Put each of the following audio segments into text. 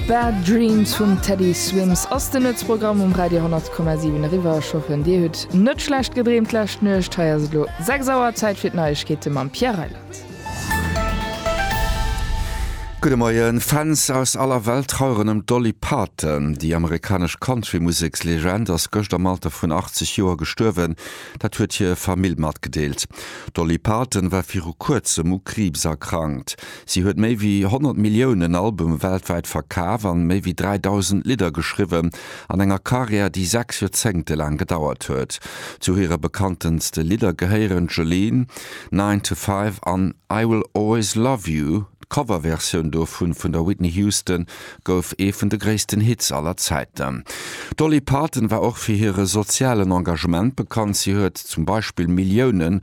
Bad Dreams vum Teddy Swims ass den Nuetsprogramm um Radio 10,7. Eriwwer, ech hoffen dir hutt net schlecht gedreemt d'lescht Nuecht. Hei ass et elo 6 Auer, Zäit fir d'Neiegkeete mam Pierre Reyland. Gudde Moien. Fans aus aller Welt traueren ëm d'Dolly Parton. Déi amerikanesch Country-Musekslegend ass gëscht am Alter vun 80 Joer gestuerwen. Dat huet hir Famill matgedeelt. D'Dolly Parton war viru kuerzem u Kriibs erkrankt. Si huet méi wéi 100 Milliounen Albume weltwäit verkaf an méi wéi 3.000 Lidder geschriwwen, an enger Karriär déi 6 Joerzéngte laang gedauert huet. Zu hire bekanntenste Lidder gehéieren Jolene, Nine to Five an I Will Always Love You. D'Coverversioun dovun vun der Whitney Houston gouf ee vun de gréissten Hits aller Zäiten. D'Dolly Parton war och fir hire sozialen Engagement bekannt, si huet zum Beispill Milliounen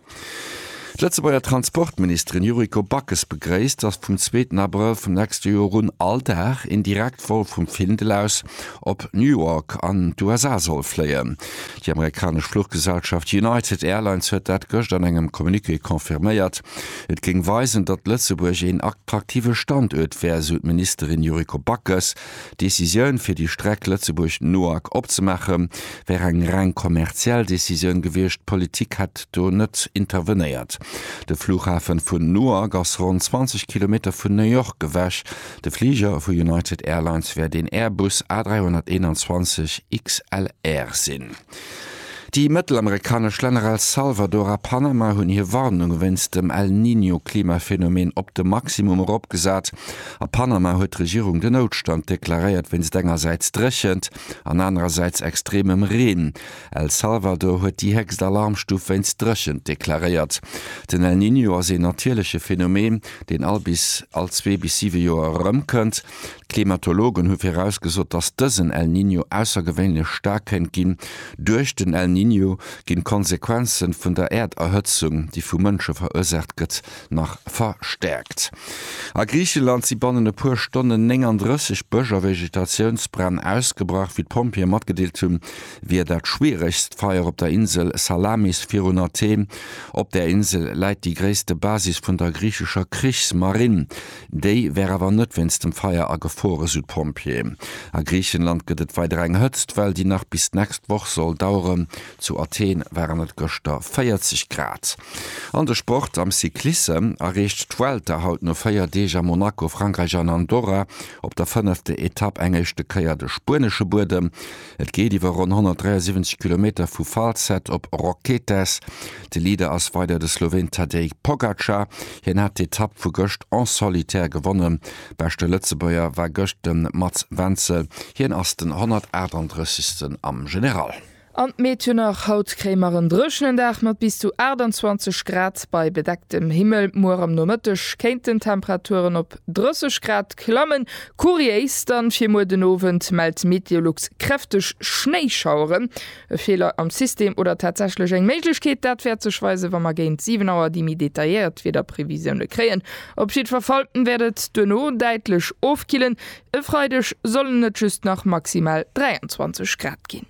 D'Lëtzebuerger Transportministerin Yuriko Backes begréisst, datt vum zweeten Abrëll vum nächste Joer un all Dag een Direktvol vum Findel aus op New York an d'USA soll fléien. Déi amerikanesch Fluchgesellschaft United Airlines huet dat gëscht an engem Communiqué confirméiert. Et géing weisen, datt Lëtzebuerg een attraktive Standuert wär, esou d'Ministerin Yuriko Backes. D'Decisioun fir déi Streck Lëtzebuerg-Noack opzemaache wär eng reng kommerziell Decisioun gewiescht, d'Politik hätt do net intervenéiert. De Flughafen vun Noack ass ronn 20 Kilometer vun New York ewech. De Fliger vu United Airlines wär den Airbus A321 XLR sinn. Déi mëttelamerikanesch Länner El Salvador a Panama hunn hir Warnung wéinst dem El Niño-Klimaphenomen op de Maximum eropgesat. A Panama huet d'Regierung den Noutstand deklaréiert wéinst engersäits Dréchent an anerersäits extremem Reen. El Salvador huet déi héchst Alarmstuf wéinst Dréchent deklaréiert. Den El Niño ass een natierleche Phenomen, deen all bis all zwee bis siwe Joer erëmkënnt. D'Klimatologen hu virausgesot, dass dësen El Niño aussergewéinlech staark kéint ginn. Duerch den El Niño ginn d'Konsequenze vun der Äerderhëtzung, déi vu Mënsche verursaacht gëtt, nach verstäerkt. A Griicheland si bannen e puer Stonnen 39 Bësch a Vegetatiounsbränn ausgebrach. Wéi d'Pompjeeë matgedeelt hunn, wier dat schwieregst Feier op der Insel Salamis virun Athen. Op där Insel läit déi gréisste Basis vun der griichescher Krichsmarinn. Déi wär awer net wéinst dem Feier agefruer, esou d'Pompjeeë. A Griichenland gëtt et weider eng Hëtztwell, déi nach bis d'nächst Woch soll daueren. Zu Athen waren et gëschter 40 Grad. An de Sport, Am Cyclisse erreecht d'Vuelta haut no 4 Deeg a Monaco, Frankräich an Andorra op der fënnefte Etapp eng éischte Kéier de spuenesche Buedem. Et geet iwwer ronn 173 Kilometer vu Falset op Roquetes. De Leader ass weider de Sloween Tadej Pogacar. Hien hat d'Etapp vu gëscht en solitaire gewonnen. Beschte Lëtzebuerger war gëscht de Mats Wenzel, hien ass den 138. am General. An d'Meed jo nach. Haut kréie mer en dréchenen Dag mat bis zu 28 Grad bei bedecktem Himmel. Muer am Nomëtteg kéinten d'Temperaturen op. 30 Grad klammen. Kuriéis dann fir muer den Owend mellt Meteolux kräfteg Schnéischaueren. E Feeler am System oder tatsächlech eng Méiglechkeet? Dat wäert sech weisen, wa mer géint 7 Auer déi méi detailléiert Wiederprevisioune kréien. Op jiddwer Fall wäert et duerno däitlech ofkillen. E Freideg sollen et just nach maximal 23 Grad ginn.